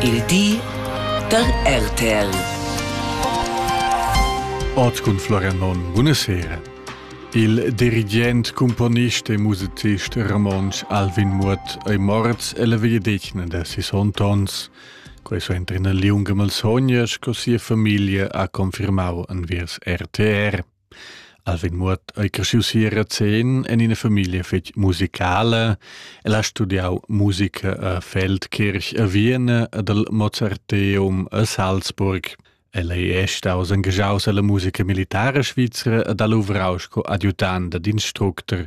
Il di da RTL. Ot cun Florian Monn, buna sera. Il dirigent, componist e musicist romontsch Alvin Muot ei morts ella vegliadetgna da sis ontons. Quei so entra ina liunga malsogna sco sia famiglia ha confirmau enviers RTR. Alvin Muot ei cresciu si a Razén en ina famiglia fetg musicala. El ha studiau musica a Feldkirch a Vienna ed al Mozarteum a Salzburg. El ei è staus engaschaus alla musica militara svizra ed ha luvrau sco adjutant ed instructor.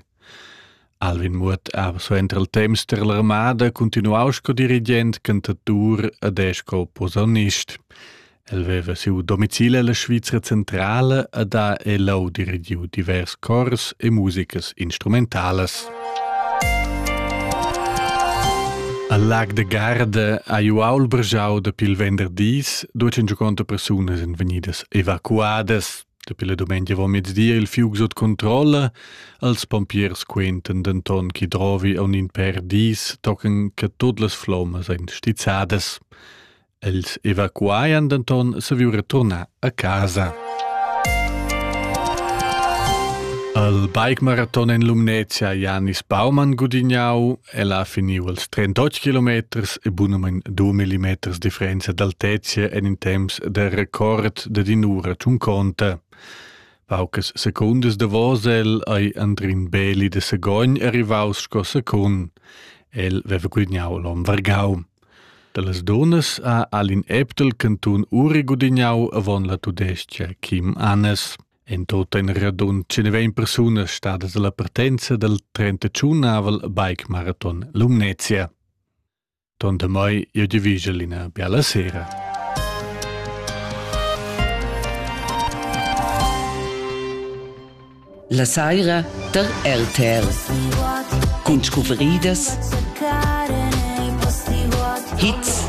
Alvin Muot ha suenter il temps tar l'armada cuntinuau sco dirigent cantatur ed è sco posaunist. El veva siu domicil ella Svizra centrala ed ha elau dirigiu divers cors e musicas instrumentalas. Al lag de Garda ha ju aul brgiau dapi il venderdis, duecin giuconta persunas en vegnidas evacuadas. Dapi la dumengia avomezdi è il fiug sut controlla, els pompiers quentan denton che drovi aun in per dis tocan che tut las flommas ein stizzadas. Els evacuaian denton saviu returnar a casa. Al bike maraton en Lumnezia Janis Baumann gudignau Ella ha finiu els 38 kilometers e bunamein 2 millimeters differenza d'altezia en in temps de record de dinura tun conta. Paucas secundas davos el ei Andrin Beli de Segogn arrivaus sco secund. El veva gudignau l'om Vargau. Dallas dunas ha Alin Eptel cantun uri gudignau avon la tudescia Kim Annes. En tot in radund 120 persunas stadas alla partenza dal 35-avel bike marathon Lumnezia. Ton da mai io di vigel ina biala sera. La saira tar RTL cun scuvridas, hits